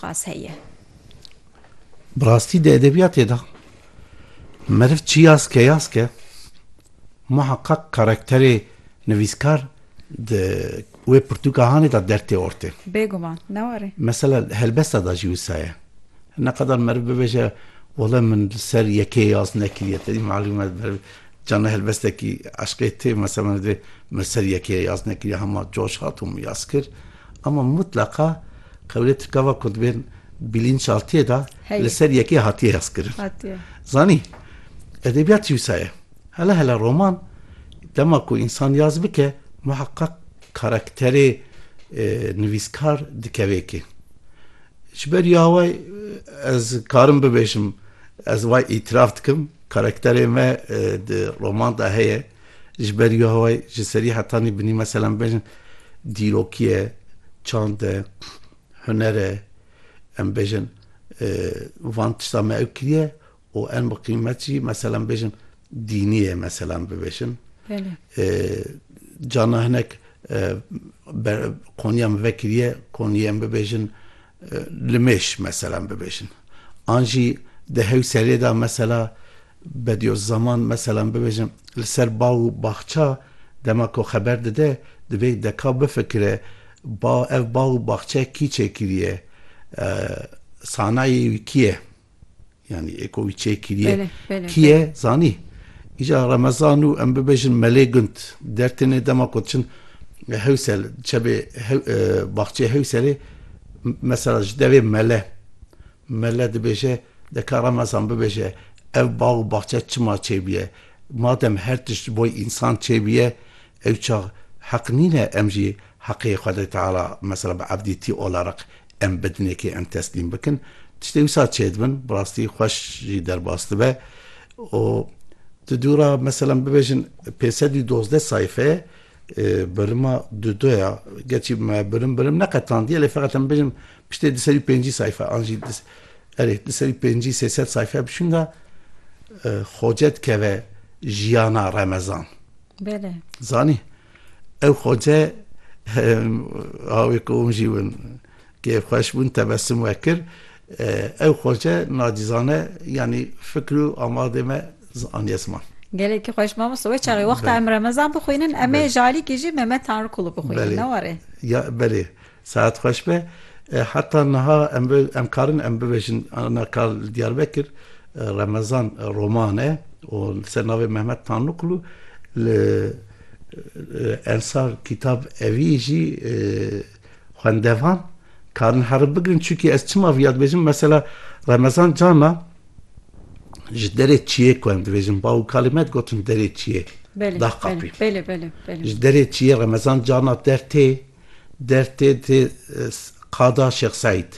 qas heye. Bi rastî di edebiyatê de meriv çi yaz ke yaz ke muheqqeq karakterê nivîskar di wê pirtûka hanê de der tê ortê. Bêguman, ne were? Mesela di helbesta de jî wisa ye. Ne qadar meriv bibêje wele min li ser yekê yaz nekiriye tenê malûm e meriv cana helbestekî eşqê tê mesela min dibê min li ser yekê yaz nekiriye hema coş hat û min yaz kir. Ama mutleqa qewlê Tirkava ku dibên bîlînçaltiyê de li ser yekê hatiye hezkirin. Zanî, edebiyat wisa ye. Hele hele roman dema ku însan yaz bike muheqeq karakterê nivîskar dikeve kê. Ji ber ya we ez karim bibêjim, ez wa îtiraf dikim, karakterê me di roman de heye. Ji ber ya wê ji serî hetanî binî mesela em bêjin dîrokî ye, çand e, huner e, em bêjin van tiştan me ew kiriye û en bi qîmet jî mesela em bêjin dînî ye mesela em bibêjin. Cana hinek qonîya min vekiriye, qonîyê em bibêjin Li mêş meselan bibêjin. An jî di hewselê de mesela Bediozzaman meselan bibêjin li ser ba û baxça dema ku xeber dide divê deka bifikire ba ev ba û baxçe kî çêkiriye? Sanayê wî kî ye? Yanî êko wî çê kiriye kiye zanî. Îca remezan û em bibêjin melê gund dertêne dema ku diçin hewsel çebê baxçeyê hewselê mesela ji devê mele mele dibêje deka remezan bibêje ev bax û baxçe çima çêbûye madem her tişt ji bo însan çêbûye ew çax heq nîne em jî heqê Xwedê Teala mesela bi evdîtî ola req Em bi dinekê em teslîm bikin, tiştê wisa çêdibin, bi rastî xweş jî derbas dibe û di dû ra meselan bibêjin pênc sed û dozdeh sayfe birima du do ya, gerçî me birim birim neqetandiye lê feqet em bibêjin piştê du sed û pêncî sayfe an jî erê du sed û pêncî sê sed sayfe bişûnda xoce dikeve jiyana remezan. Bele. Zanî? Ew xwece awê ku hûn jî win kêfxweş bûn tebesum we kir. Ew xwece nacizane yanî fikr û amadê me aniye ziman. Gelekî xweş mamoste. Wê çaxê wexta em remezan bixwînin em ê ji alîkê jî Memed Tanrıkulu bixwînin ne were? Ya belê. Saet xweş be. Heta niha em em karin em bibêjin ana ka li Diyarbekir Remezan Roman e û li ser navê Mehmet Tanrıkulu li Ensar Kitab Evi jî xwendevan karin heriv bigirin çunkî ez çima vîya dibêjim mesela Remezan Cana ji derê çiyê ku em dibêjin bav û kalê me digotin derê çiyê Belê belê belê belê belê ji derê çiyê Remezan Cana der tê Der tê tê qada Şêx Seîd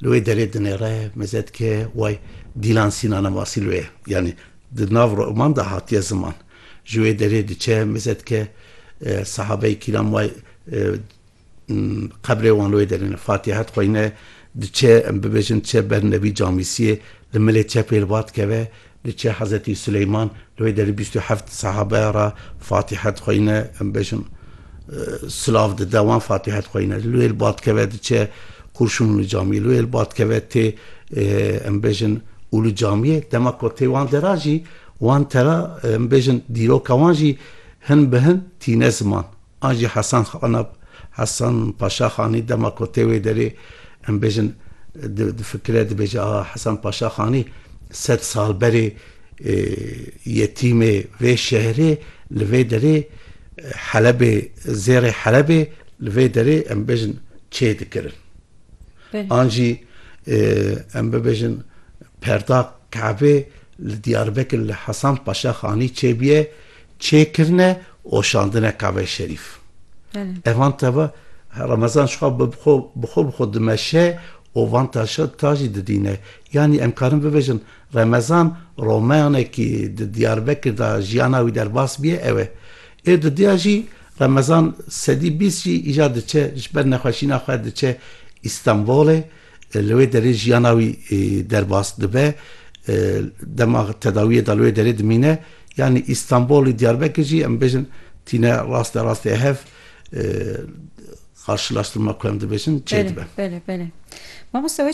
li wê derê dinêre meze dike way Dîlan Sînana masî li wê ye. Yanî di nav roman de hatiye ziman. Ji wê derê diçe meze dike sehabeyî kîlam way qebrê wan li wê derê ne. Fatiha dixwîne diçe em bibêjin diçe ber Nebî Camîsiyê li milê çepê li ba dikeve. Li çê Hezretî Suleyman li wê derî bîst û heft sehabeya re Fatîhe dixweyne, em bêjin silav dide wan Fatîhe dixweyne. Li wê li ba dikeve diçe Qurşûn Ulu Camiyê. Li wê li ba dikeve tê em bêjin Ulu Camiyê. Dema ku tê wan dera jî wan tera em bêjin dîroka wan jî hin bi hin tîne ziman. An jî Hesan Xanab, Hesan Paşa Xanî dema ku tê wê derê em bêjin difikire dibêje aha Hesan Paşa Xanî sed sal berê yetîmê vê şehrê li vê derê Helebê zêrê Helebê li vê derê em bêjin çê dikirin. An jî em bibêjin perda Kabê li Diyarbekir li Hesan Paşa Xanî çêbûye. Çêkirine û şandineka vê şerîf. Ev van teva Remezan ji xwe bi xwe bi xwe dimeşe û van taşa ta jî didîne. Yanî em karin bibêjin Remezan romanekî di Diyarbekir de jiyana wî derbas bûye ew e. Ê di diya jî Remezan sedî bîst jî îcar diçe ji ber nexweşîna xwe diçe Îstanbûlê. Li wê derê jiyana wî derbas dibe, dema tedawiyê de li wê derê dimîne. Yanî Îstanbol û Diyarbekir jî em bêjin tîne raste rastê hev qarşilaştirma ku em dibêjin çêdibe. Bele bele. Mamoste wê